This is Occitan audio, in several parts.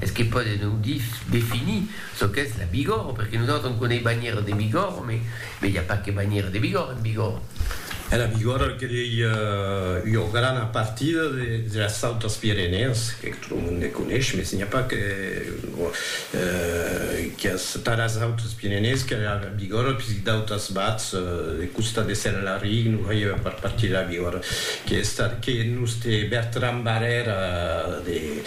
Es que pòde non definir çò qu'es la Bigòrre, perque nosautres on coneis banhièra de Bigòrre, me me i a pas que banhièra de Bigòrre en Bigòrre. E la Bigòrre el que dei ua grana partida de las autas Pirenèas, que tot lo monde coneis, mes n'i a pas que qu'es pas las autas Pirenèas que la Bigòrre, puisque d'autas bats de costat de Senelaric non faieva pas partir de la Bigòrre, que es estat que nos te Bertran Barrèra de.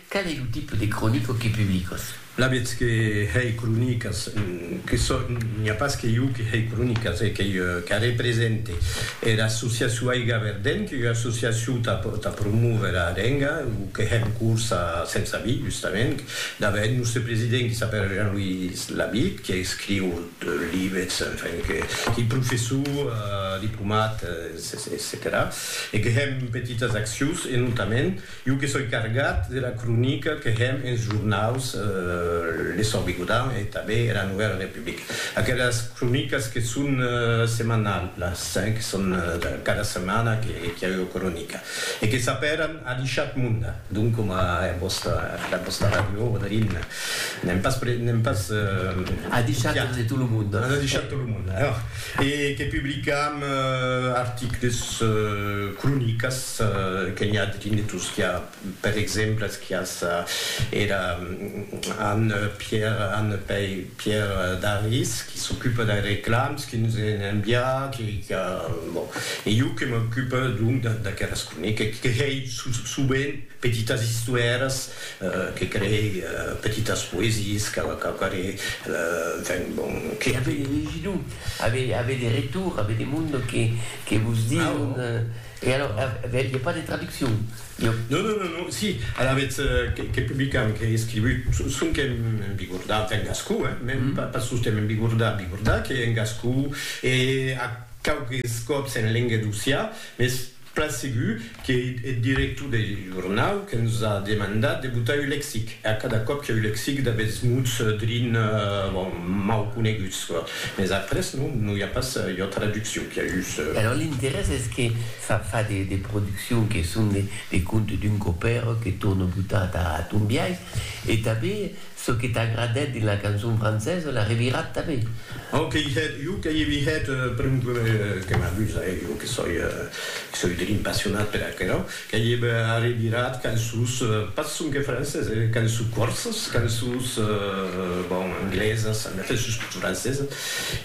Qual ei lo tipe de cronica que publicas? La vètz que hèi cronicas que sò, n'i a pas que iu que hèi cronicas, e qu'ei ieu qu'a represente. Era associacion Aiga Verdent, qu'ei ua associacion tà tà promóver a lenga, o que hè en corsa sens avis, justament, dava eth nòste president qui s'apèra Jean-Louis Labitte, qui escriu libets, enfin, que qu'ei professor, diplomat, etcetèra, e que hèm petitas accions, e notament, Jo que soi cargat de la cronica que hèm enes jornaus Le Sòrt Bigodan e tanben era Novèla Republica. Aquelas cronicas que son semanalhas, que son cada setmana que i a ua cronica e que s'apèran A l'Ishat Munda, donc coma era vòsta, era vòsta ràdio Odrin. N'èm pas pre, n'èm pas A l'Ishat de tot lo monde. A l'Ishat de tot lo monde. E que publicam articles, cronicas. que n'i a de dinetos qu'a per exemples quias era Anne Pierre Anne Pei Pierre Daris qui s'ocupe dei reclams qui nos en envia qui qu'a bon e jo que m'ocupe donc d'aqueres croniques qui crei sovent petitas istoires que crei petitas poesies qu'a qu'a quare enfin bon que avei legido avei avei de retour avei de monde que que vos diu E alors, aviá pas de traduccion? Non, non, non, non, si, alavetz que publicam, qu'ei escrivut, sonque en bigordà, enfin en gascon, hein, mèm pas sosten en bigordà, bigordà, qu'ei en gascon, e a quauques còps en lenga d'Ossià, mès plan segur qu'ei eth director deth jornau que nos a demandat de botar un lexic, e a cada còp qu'ei un lexic d'aguests mots drin, bon, mau coneguts. Mes après non, non i a pas ua traduccion, qu'i a just. Alòrs l'interès es que fa fa de de produccions que son de de contes d'un copèr que torna botar ta ton biais e tanben çò que t'agradèt dins la cançon francesa la revirat tanben. Au que i hèt, jo que i vi hèt, pr'un que m'amusa, eh, jo que soi, que soi d'un impassionat per aquerò. Qu'ei eb arribirat qu'en sus, pas sonque francés, qu'en sus corsas, qu'en sus, bon, anglesas, en efèth sus tot francesas.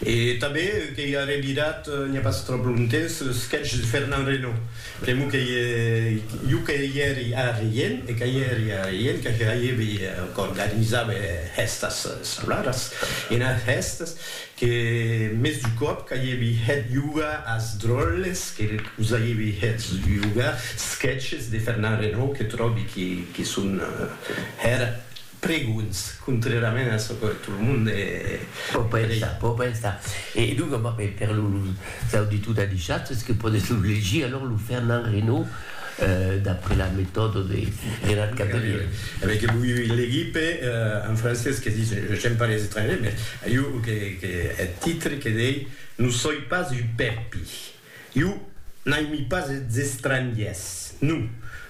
E tanben qu'ei arribirat, n'i a pas tròp longtemps, ce sketch de Fernand Reynaud. Pr'amor qu'ei jo que i èri arrien, e que i èri arrien, que hèibi, qu'organizava hèstas escolaras, e enas hèstas, Que mès du còp qu'aievi hèt jugar as dròlles que us aievi hèt jugar sketches de Fernand Renaud que tròbi que son hèr pregons, contrèrament a çò que tot lo monde pòt pensar. Pòt pensar. E donc, per los auditors d'Adishat, es que pòdes lo legir, alòr, lo Fernand Renaud. d'après la metòda de Renat Catelièr. E ben que vòi legir per un francés que ditz, j'aime pas les étrangers, mès jo que que eth titre que dei Non soi pas un pèpi, jo n'aimi pas es estrangiers, non,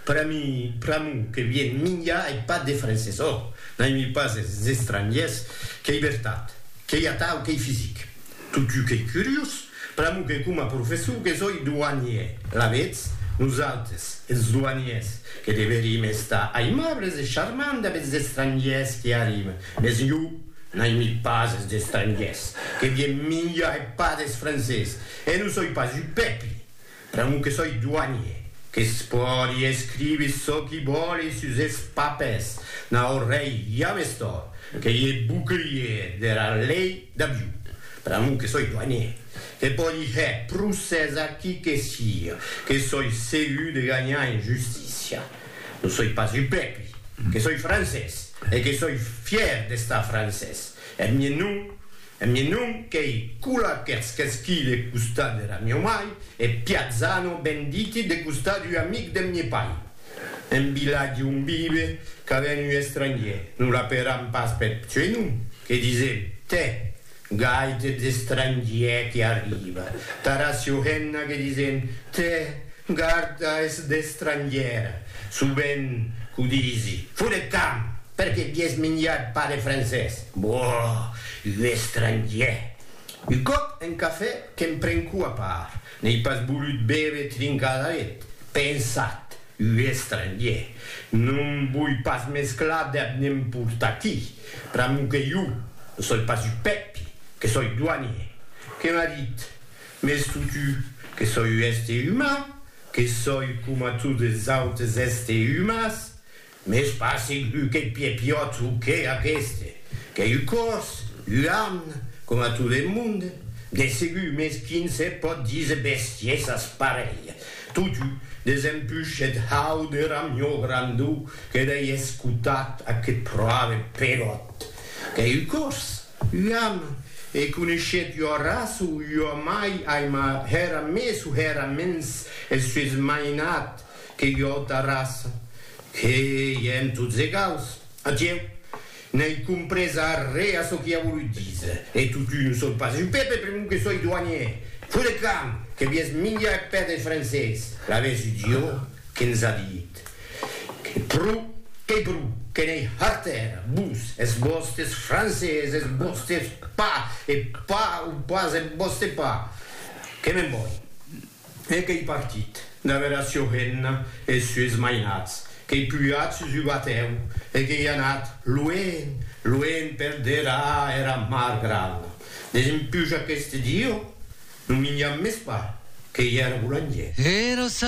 per a mi pr'amor que vien minjar eth pat des francés, ò, n'aimi pas es estrangiers, qu'ei vertat, qu'ei atau, qu'ei fisic. Totjou qu'ei curiós, pr'amor que coma professor que soi douanier, alavetz, nosautres, es douaniers, que deverim estar aimables e charmants damb es estrangiers qui arriben, mes jo n'aimi pas es estrangiers, que vien minjar e pas des francés, e non soi pas un pèpi, Pr'amor que soi doanier, que's pòdi escrivi çò qui vòli sus es papers, n'a ò rei james tòrt, qu'ei e bouclier dera lei d'avion. Pr'amor que soi doanier, que pòdi hèr procès a qui que sia, que soi segur de ganhar en justícia. Non soi pas un pèpri, que soi francés e que soi fièr d'estar francés. Eth mien nom. E mi non qu'ei cula qu'èrs qu'esquí de costat dera mieu mai, e Piazzano ben diti de costat ua amic deth mi pai. En vilatge on vive ca ven un estrangier, non l'aperam pas peth pseunom, que disem, tè, gai deth estrangier que arriba, tara Siohenna que disem, tè, garda es d'estrangier, sovent qu'o disi, fot eth camp, perque vies minjat pas de francés. Boh! Un estrangièr! Un còp en cafè que'm prenco a part, n'ei pas volut bève trincada eth. Pensat, un estrangièr! No'm voi pas mesclar deth nemport'aquí. Pr'amor que jo ne soi pas un Pèpi, que soi doanier. Que m'as dit? Mès totu, que soi un èster uman, que soi coma totes es autes èster umans, Mès pas segur qu'eth piè piòt o que aqueste, qu'ei un còrs, un arn, coma tot eth monde, de segur, mès quin se pòt díser bestiesas parelha. Totú, desempuish eth hau de ramió grandó que dei escotat aqueth pròve peròt, qu'ei un còrs, un arn, e coneishèt ua raça o ua mai aima hèra mès o hèra mens eth sues mainat, Que jo ta raça, que èm tots egaus. Atieu, n'ai comprés arré a çò qui a volut díser. E totun o soi pas un pèpe pr'amor que soi douanier. Fut de camp, que vies minjar eth pè deth francés. Laves un dieu que e'ns a dit que pro qu'ei pro, que n'ei hartèra, vos, es vòstes francés, es vòstes pa, e pa o pas eth vòste pa. Que me'n voi. E qu'ei partit, damb era sua hemna e es sues mainats, qu'ei pujat sus un batèu e qu'ei anat luenh, luenh per derar era mar grana, desempuja qu'este dieu non minjam mès pas, qu'ei era bolangièr. Era